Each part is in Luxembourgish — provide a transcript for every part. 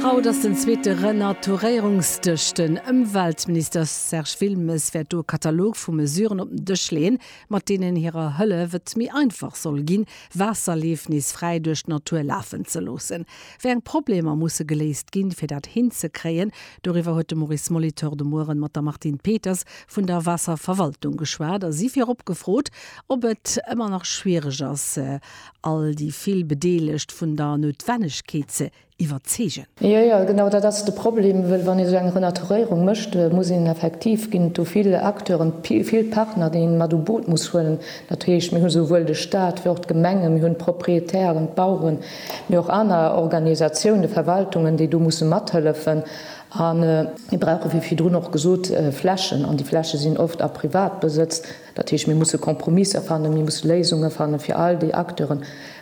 Haut ass den zweete Renaturéierungsdësch. Den Ëmweltminister Serge Wilmes wäert do e Katalog vu Mesuren op den Dësch leeën, mat deenen hirer Hëllef et méi einfach soll ginn, Waasserleef nees fräi duerch d'Natur lafen ze loossen. Wéi eng Problemer musse geléist ginn, fir dat hinzekréien? Doriwwer huet de Maurice Molitor de Muere mat der Martine Peters vun der Waasserverwaltung geschwat a si virop gefrot, ob et ëmmer nach schwiereg ass, All déi vill Bedeelegt vun der Noutwennegkeet ze iwwerzeegen. Jo, jo, genau dat ass de Problem, wëll wann ee sou eng Renaturéierung mécht, muss een effektiv, ginn et do vill Acteuren, vill Partner, déi een mat u Boot muss huelen. Dat heescht, mir hu souwuel de Stat wéi och d'Gemenge, mir hunn d'Propriétairen, d'Baueren, mee och aner Organisatiounen, Verwaltungen, déi do musse mathëllefen. A mir brauche wéi virdrun och gesot Flächen, an déi Fläche sinn oft a Privatbesëtz. Dat heescht, mir musse Kompromisser fannen, mir musse Léisunge fannen, fir all déi Acteure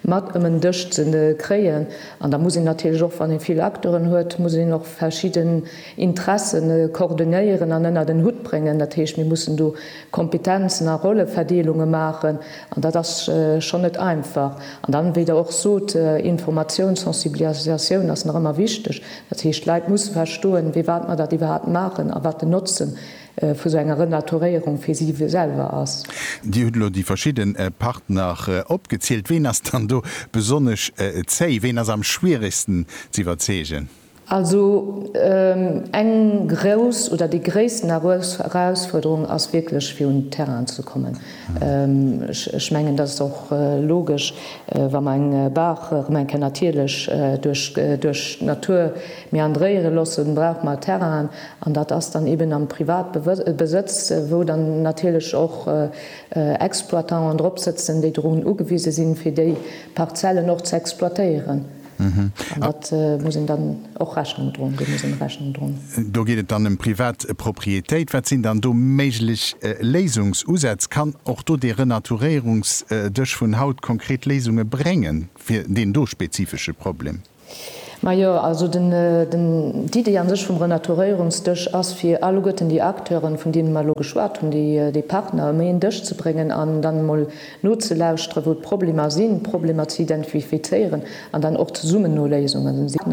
mat ëm en Dësch ze kréien. An da muss een natierlech och, wann ee vill Acteuren huet, muss een och verschidden Interesse coordonéieren an ënnert en Hutt bréngen. Dat heescht, mir mussen do Kompetenzen a Rolleverdeelunge maachen an dat ass schonn net einfach. An dann, wéi Der och sot, Informatioun, Sensibilisatioun ass nach ëmmer wichteg. Dat heescht, d'Leit musse verstoen, firwat mer dat iwwerhaapt maachen a wat den Notzen vu sou enger Renaturéierung fir si selwer ass. Dir hutt elo déi verschidde Partner opgezielt. Ween ass dann do besonnesch zéi? Ween ass am schwieregsten z'iwwerzeegen? Also eng grouss oder déi gréissten Erausfuerderung ass wierklech fir un Terrain ze kommen. Ech mengen dat ass och logesch, wa mer eng Baach erëm eng Kéier natierlech duerch d'Natur meandréiere loossen, brauch mer Terrainen. An dat ass dann eben am Privatbesëtz, wou dann natierlech och Exploitanten drop sëtzen, déi drun ugewise sinn, fir déi Parzellen och ze exploitéieren. An dat muss een dann och Rechnung droen, deem muss een Rechnung droen. Do geet et dann ëm privat Proprietéit. Wat sinn dann do méiglech Léisungsusätz? Kann och do dee Renaturéierungsdësch vun haut konkret Léisunge bréngen fir deen do spezifesche Problem? Majo, also d'Iddi a sech vum Renaturéierungsdësch ass, fir alleguerten déi Acteuren, vun deene mer elo geschwat hunn, déi Partner ëm een Dësch ze bréngen an dann emol nozelauschteren, wou d'Problemer sinn, d'Problemer ze identifizéieren an dann och zesummen no Léisungen ze sinn.